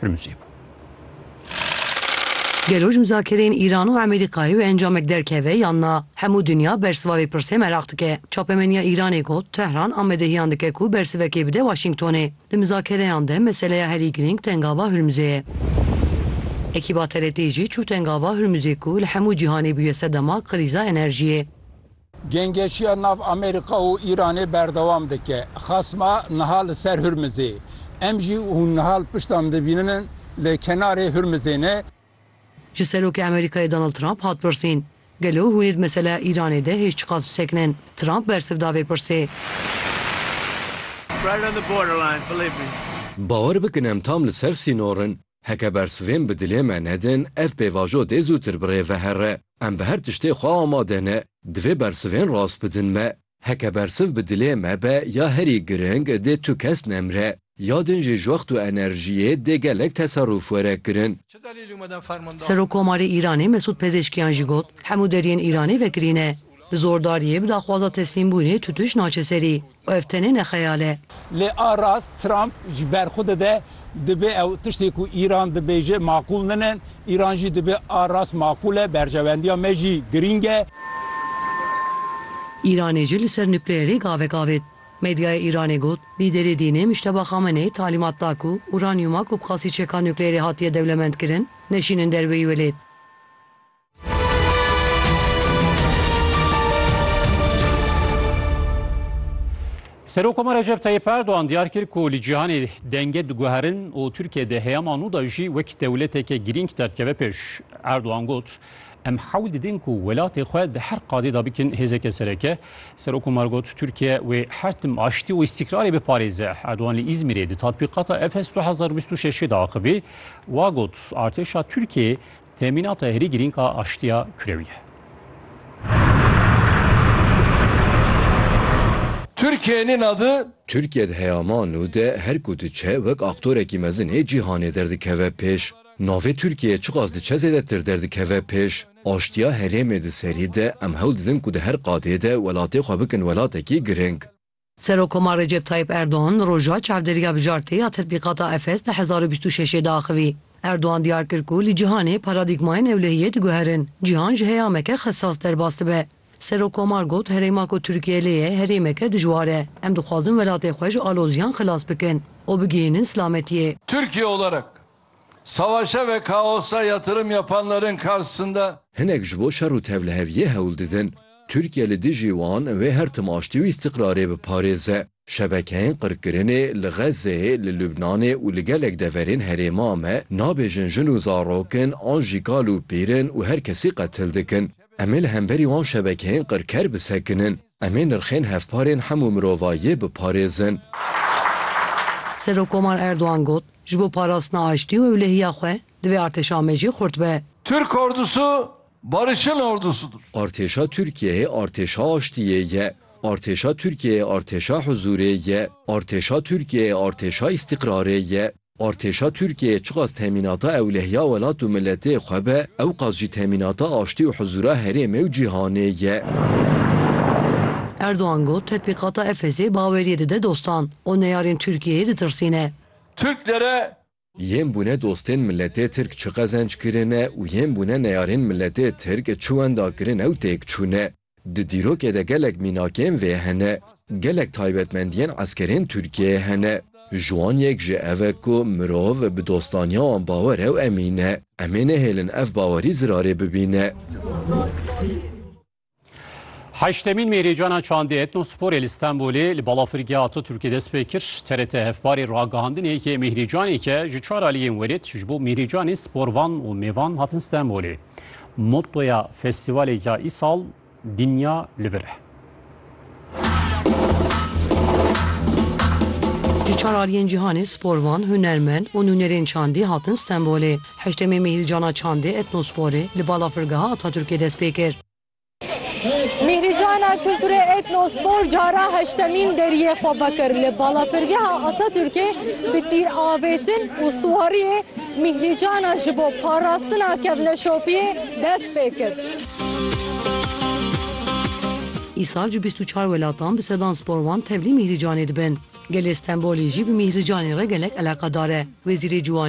Hurmuzê bû. Gelo ji muzakereyên Îran û Amerîkayê wê encamek derkeve yan na? Hemû dinya bersiva vê pirsê meraq dike. Çapemeniya Îranê got, Tehran amadehiyan dike ku bersivekê bide Waşîngtonê. Di mizakereyan de meseleya herî girîng tengava Hurmuzê ye. Ekîba TRT'ê jî çû tengava Hurmuzê ku li hemû cîhanê bûye sedema krîza enerjiyê. Gengeşiya nav Amerîka û Îranê berdewam dike. Xasma niha li ser Hurmizê. Em jî hûn niha li pişta min dibîninin li kenarê Hurmizê ne. Ji Serokê Amerîkayê Donald Trump hat pirsîn, Gelo hûn ê di meseleya Îranê de hêj çiqas bisekinin? Trump bersiv da vê pirsê. Bawer bikin em tam li ser sînor in. Heke bersivên bi dilê me nedin, ev pêvajo dê zûtir bi rê vehere. Em bi her tiştê xwe amade ne. Divê bersivên rast bidin me. Heke bersiv bi dilê me be ya herî giring dê tu kes nemre. Ya din jî ji wext û enerjiyê dê gelek teserûf were kirin. Serokkomarê Îranê Mesûd Pezêşkiyan jî got, Hemû deriyên Îranê vekirî ne. Bi zordariyê, bi daxwaza teslîmbûnê tu tuş naçe serî. Û ev tenê ne xeyal e. Lê a rast Trump ji ber xwe dide, dibê ew tiştê ku Îran dibêje maqûl nine, Îran jî dibê a rast maqûl e, berjewendiya me jî girîng e. Îranê jî li ser nukleerê gavek avêt. Medyaya Îranê got, Lîderê dînê Mujteba Xamenei talîmat da ku uranyûma ku bi qasî çeka nukleerê hatiye dewlemendkirin, neşînin derweyî welêt. Serokomar Recep Tayyip Erdoğan diyar kir ku li cîhanê denge diguherin û Tirkiye de heyama nû da jî wek dewleteke girîng derdikeve pêş. Erdoğan got, Em hewl didin ku welatê xwe di her qadê de bikin hêzeke sereke. Serokomar got, Tirkiye wê her tim aştî û îstîkrarê biparêze. Erdoğan li Îzmîrê di tatbîqata Efes 2026 de axivî wa got, Artêşa Tirkiyeyê Temînata herî girîng a aştiya kurewî ye. Türkiye nê nadı. Türkiye di heyaman nû de her ku diçe wek aktorekî mezin ê cîhanê derdikeve pêş. Navê Türkiye çiqas diçe zêdetir derdikeve pêş. Aştiya herêmê di serî de em hewl didin ku di her qadê de welatê xwe bikin welatekî girîng. Serokomar Recep Tayyîp Erdogan roja çavdêriya bijartê ya Tetbîqata Efes di hezar û bîst û şeşê de axivî. Erdogan diyar kir ku li cîhanê paradîgmayên ewlehiyê diguherin, cîhan ji heyameke xesas derbas dibe. Serokomar got, Herêma ku Tirkiye lê ye herêmeke dijwar e. Em dixwazin welatê xwe ji aloziyan xilas bikin û bigihînin silametiyê. Tirkiye olarak Savaşa ve kaosa yatırım yapanların karşısında. Hinek ji bo şer û tevliheviyê hewl didin. Tirkiye li dijî wan wê her tim aştî û îstîqrarê biparêze. Şebekeyên qirkirinê li Xezzeyê, li Lubnanê û li gelek deverên herêma me nabêjin jin û zarokin an jî kal û pîrin û her kesî qetil dikin. Em ê li hemberî wan şebekeyên qirker bisekinin. Em ê nirxên hevparên hemû mirovayiyê biparêzin. Serokkomar Erdogan got, Ji bo parastina aştî û ewlehiya xwe divê artêşa Amedjê xurt be. Türk ordusu barışın ordusudur. Artêşa Tirkiyeyê artêşa aştiyê ye. Artêşa Tirkiyeyê artêşa huzurê ye. Artêşa Tirkiyeyê artêşa îstîqrarê ye. Artêşa Tirkiyeyê çiqas temînata ewlehiya welat û miletê xwe be, ewqas jî temînata aştî û hizûra herêmê û cîhanê ye. Erdogan got, Tetbîqata Efesê baweriyê dide dostan û neyarên Tirkiyeyê ditirsîne. Tirklere. Yên bûne dostên miletê Tirk çi qezenc kirine û yên bûne neyarên miletê Tirk çi wenda kirine û têk çûne. Di dîrokê de gelek mînakên vê hene, gelek taybetmendiyên eskerên Tirkiyeyê hene. Ji wan yek jî ev e ku mirov bi dostaniya wan bawer e û emîn e. Em ê nehêlin ev bawerî zirarê bibîne. Heştemîn Mêrêcana Çandê Etnosporê li Stenbolê li Balafirgeha Ataturkê dest pê kir. TRT hevparê ragihandinê yê mêhrêcaneke ji çar aliyên werêt ji bo mêhrêcanên sporvan û mêvan hatin Stenbolê. Mottoya festîvalê ya îsal Dinya li vir e. Ji çar aliyên cîhanê sporvan, hunermend û nûnerên çandî hatin Stenbolê. Heştemê Mîhîlcana Çandê, Etnosporê, li Balafirgeha Atatürkê dest pê kir. Mîhrîcana Kulturê Etnospor cara heştemîn deriyê xwe vekir li Balafirgeha Atatürkê bi tîravêtin û siwariyê mîhrîcana ji bo parastina kevneşopiyê dest pê kir. Îsal ji bîst û çar welatan bi sedan sporvan tevlî mîhrîcanê dibin. Gelê Stenbolê jî bi mîhrîcanê re gelek eleqedar e. Wezîrê Ciwanê